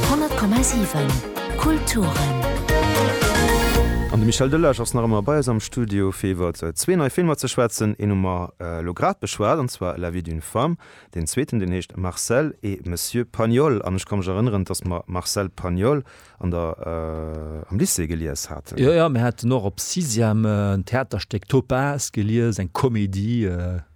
100,7 Kulturen. An de Michel Delage ass nach ëmmer bei eis am Studio, fir iwwer zwee nei Filmer ze schwätzen. Een hu mer elo grad beschwat, an zwar La vie d'une femme. Deen zweeten, deen heescht Marcel et Monsieur Pagnol. An ech ka mech erënneren, dass mer Marcel Pagnol an der, am Lycée gelies haten. Jo, jo, mir haten och op Sixième en Theaterstéck Topaz gelies, eng Komedie.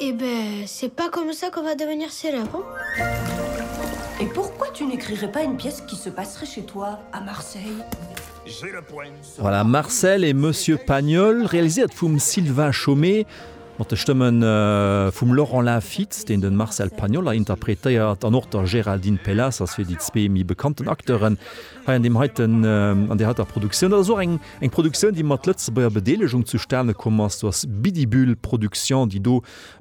Eh ben, c'est pas comme ça qu'on va devenir célèbre, hein? Et pourquoi tu n'écrirais pas une pièce qui se passerait chez toi à Marseille? Voilà, Marcel et Monsieur Pagnol, realiséiert vum Sylvain Chomet, mat de Stëmme vum Laurent Lafitte, deen de Marcel Pagnol hei interpretéiert, an och der Géraldine Pelassers fir déi zwee méi bekannten Acteuren hei an deem heiten, an där heiter Produktioun. Dat ass och eng. Eng Produktioun, déi mat Lëtzebuerger Bedeelegung zustane komm ass, do ass Bidibühl Production, déi do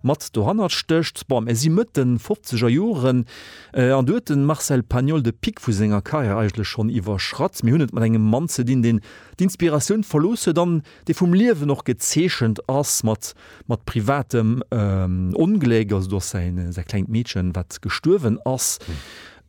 mat dohannert stécht. Bon, mir si Mëtt de fofzeger Joren, an do huet de Marcel Pagnol de Pic vu senger Karriär eigentlech schonn iwwerschratt. Mir hunn et mat engem Mann ze dinn, deen d'Inspiratioun verlooss huet an dee vum Liewen och gezeechent ass, mat, mat privatem Ongléck. Also do ass säi, säi klengt Meedchen, wat gestuerwen ass.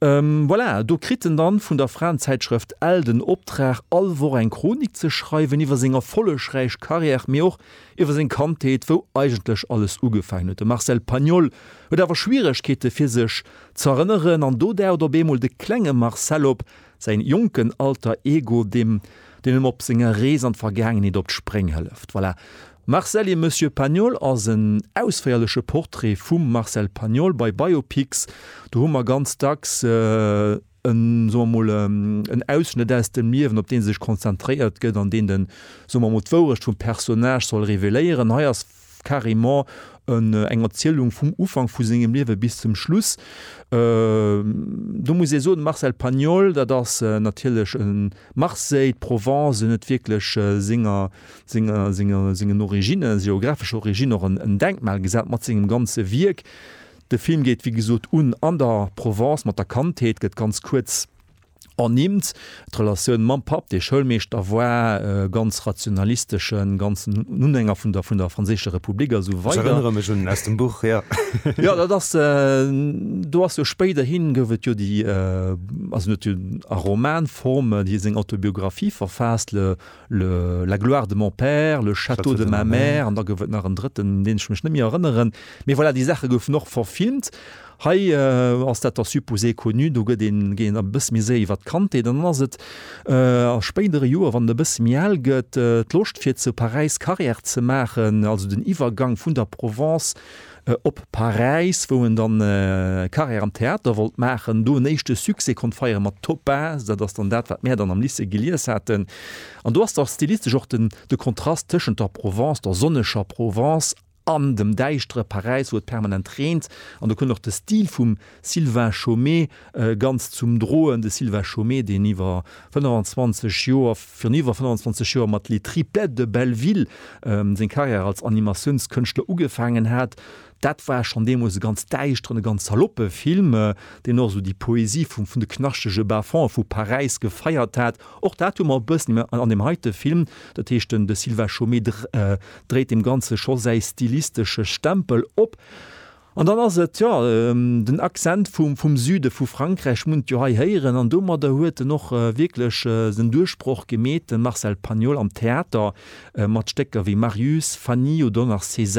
Voilà, do kritt en dann vun der Fraenzäitschrëft Elle den Optrag, all Woch eng Chronik ze schreiwen iwwer seng erfollegräich Carrière, mee och iwwer seng Kandheet, wou eigentlech alles ugefaangen huet. De Marcel Pagnol huet awer Schwieregkeete fir sech z'erënneren an do daucht op eemol de klenge Marcel op, säin jonken Alter Ego, deem deen em op senger Rees an d'Vergaangenheet op d'Spréng hëlleft. Voilà, Marcel et Monsieur Pagnol ass en ausféierleche Portrait vum Marcel Pagnol. Bei Biopics, do hu mer ganz dacks en, soe mer mol, en Ausschnëtt aus dem Liewen, op dee sech konzentréiert gëtt an deen den, soe mer mol, d'Wourecht vum Personnage soll reveléieren. Hei ass carrément en eng Erzielung vum Ufank vu sengem Liewe bis zum Schluss. Do muss ee soen, de Marcel Pagnol, dat ass natierlech e Marseille, d'Provence, en huet wierklech senger, senger, senger, sengen Originnen, senger geografescher Origine och en Denkmal gesat mat sengem ganze Wierk. De Film geet, wéi gesot, un an der Provence mat der Kandheet, gëtt ganz kuerz ernimmt. D'Relatioun mam Papp, dee Schoulmeeschter war, e ganz rationalisteschen, ganz en Unhänger vun der, vun der franséischer Republik a sou weider. Ech erënnere mech un, aus dem Buch, jo. Jo, dat ass, do ass jo spéiderhi gouf et jo déi, also en huet jo a Romanform hie seng Autobiographie verfaasst, le, le, La gloire de mon père, Le château de ma mère an da gouf et nach en drëtten, un deen ech mech net méi erënneren. Mee voilà, déi Saache goufen och verfilmt. Hei ass dat der supposé connu, do gëtt een, géint e bësse méi séier iwwert d'Kandheet an dann ass et a spéidere Joer, wann en e bësse méi al gëtt, d'Loscht fir zu Paräis Carrière ze maachen, also den Iwwergang vun der Provence op Paräis, wou en dann Carrière am Theater wollt maachen, do en éischte Succès konnt feiere mat Topaz, dat ass dann dat wat mär dann am Lycée gelies haten. An do ass da stilistesch och de Kontrast tëschent der Provence, der sonneger Provence, An dem däischtere Paräis, wou et permanent reent. An do kënnt och de Stil vum Sylvain Chomet ganz zum Droen, de Sylvain Chomet, deen iwwer 25 Joer, virun iwwer 25 Joer mat Les Triplettes de Belleville seng Karriär als Animatiounskënschtler ugefaangen hat. Dat war schonn deemools e ganz däischteren, e ganz saloppe Film, deen och esou déi Poesie vun de knaschtege Bas-fonds vu Paräis gefeiert hat. Och dat hu mer e bëssen an deem heite Film. Dat heescht, de Sylvain Chomet dréit dem Ganze scho säi stilistesche Stempel op. An dann ass et, jo, den Accent vum Süde vu Frankräich munnt jo hei héieren. An domadder huet en och wierklech sen Duerchbroch gemeet, de Marcel Pagnol, am Theater mat Stécker wéi Marius, Fanny oder och nach César.